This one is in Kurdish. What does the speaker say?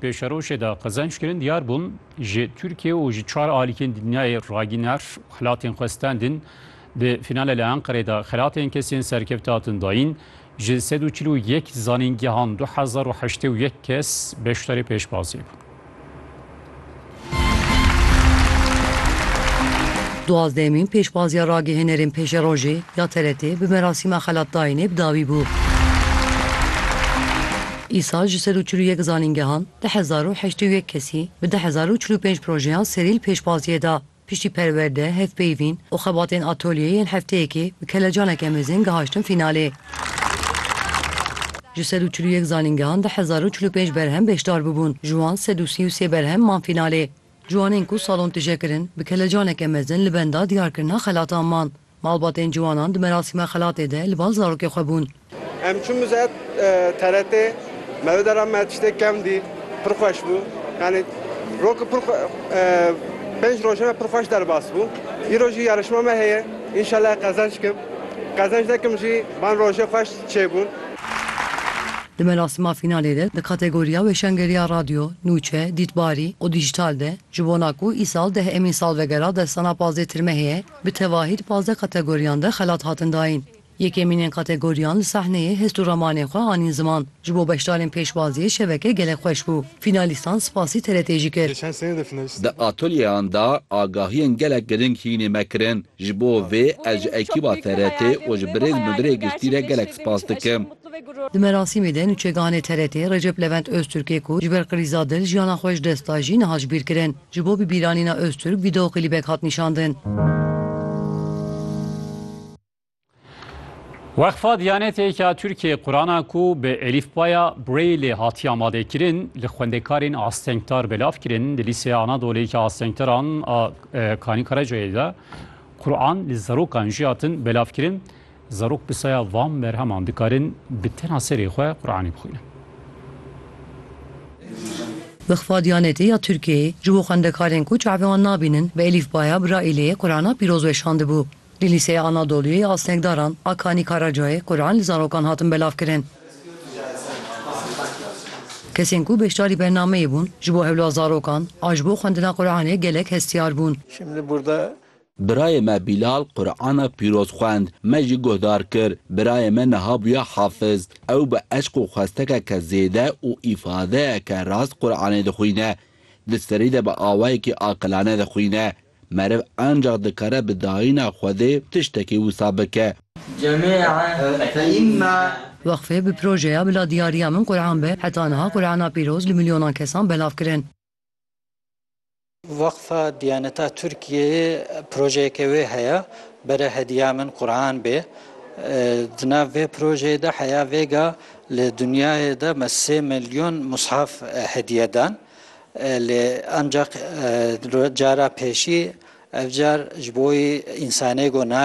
Pêşerojê de qezenc kirin diyar bûn ji Tirkiye û ji çar alîkên dinyayê ragîner xelatên xwe standin. Di fînale li Enqerê de xelatên kesên serkevtî hatin dayîn. Ji sed û çil û yek zanîngehan du hezar û heştê û yek kes beşdarî pêşbaziyê bûn. Duwazdehemîn pêşbaziya ragihênerên pêşerojê ya TRT'ê bi merasîma xelatdayînê bi dawî bû. Îsal ji sed û çil û yek zanîngehan du hezar û heştê û yek kesî bi du hezar û çil û pênc projeyan serî li pêşbaziyê da. Piştî perwerde, hevpeyvîn û xebatên atolyeyê yên hefteyekê bi kelecaneke mezin gihaştin fînalê. Ji sed û çil û yek zanîngehan di hezar û çil û pênc berhem beşdar bûbûn, ji wan sed û sî û sê berhem man fînalê. Ciwanên ku salon tije kirin, bi kelecaneke mezin li benda diyarkirina xelatan man. Malbatên ciwanan di merasîma xelatê de li bal zarokê xwe bûn. Em çûn ser TRT, me wê dera me tiştê kevn dît, pir xweş bû. Yanî rok pir pênc roja me pir xweş derbas bû. Îro jî yarişma me heye, înşellah qezenç kim. Qezenç nekim jî van rojê xweş çêbûn. Di merasîma fînalê de di kategoriya Weşangeriya Radyo, Nûçe, Dîtbarî û Dîjîtal de ji bona ku îsal deh emîn salvegera destana Pazê Tirme heye, Bi tevahî di pazdeh kategoriyan de xelat hatin dayîn. Yekemînên kategoriyan li sahneyê hest û ramanên xwe anîn ziman. Ji bo beşdarên pêşwaziyê şeveke gelek xweş bû. Fînalîstan spasî TRT'ê jî kir. Di atolyeyan de agahiyên gelek girîng hînê me kirin. Ji bo vê ez ji ekîba TRT'ê û ji birêz Mudirê Giştî re gelek spas dikim. Di merasîmê de nûçeganê TRT'ê Recep Levent Ozturkê ku ji ber krîza dil jiyana xwe ji dest da jî niha ji bîr kirin. Ji bo bibîranîna Ozturk vîdeoklîbek hat nîşandin. Weqfa Diyanetê ya Tirkiyeyê Qurana ku bi elîfbaya Brailleê hatiye amadekirin li xwendekarên astengdar belav kirin li Lîseya Anadolê ya Astengdaran a Kanî Karacayê de Quran li zarokan jî hatin belavkirin. Zarok bi saya van berheman dikarin bi tena serê xwe Quranê bixwînin. Bi xifa Diyanetê ya Tirkiyeyê ji bo xwendekarên ku çavê wan nabînin bi elîfbaya Braîleyê Qurana pîroz weşandibû. Li Lîseya Anadoluyê ya Asnekdaran a Kanî Karacayê Quran li zarokan hatin belavkirin. Kesên ku beşdarî bernameyê bûn ji bo hewla zarokan a ji bo xwendina Quranê gelek hestiyar bûn. Birayê me Bîlal Qur'ana pîroz xwend, me jî guhdar kir. Birayê me niha bûya hafiz. Ew bi eşq û xwestekeke zêde û îfadeyeke rast Qur'anê dixwîne. Di serî de bi awayekî aqilane dixwîne. Meriv encax dikare bi dayîna Xwedê tiştekî wisa bike. Weqfê bi projeya Bila diyariya min Qur'an be heta niha Qur'ana pîroz li milyonan kesan belav kirin. Weqfa Diyaneta Tirkiyeyê projeyeke wê heye, Bere hediya min Quran bê. Di nav vê projeyê de heya vêga li dinyayê de me sê milyon mushaf hediye dan. Lê ancak cara pêşî ev car ji bo wî însanê got nabê.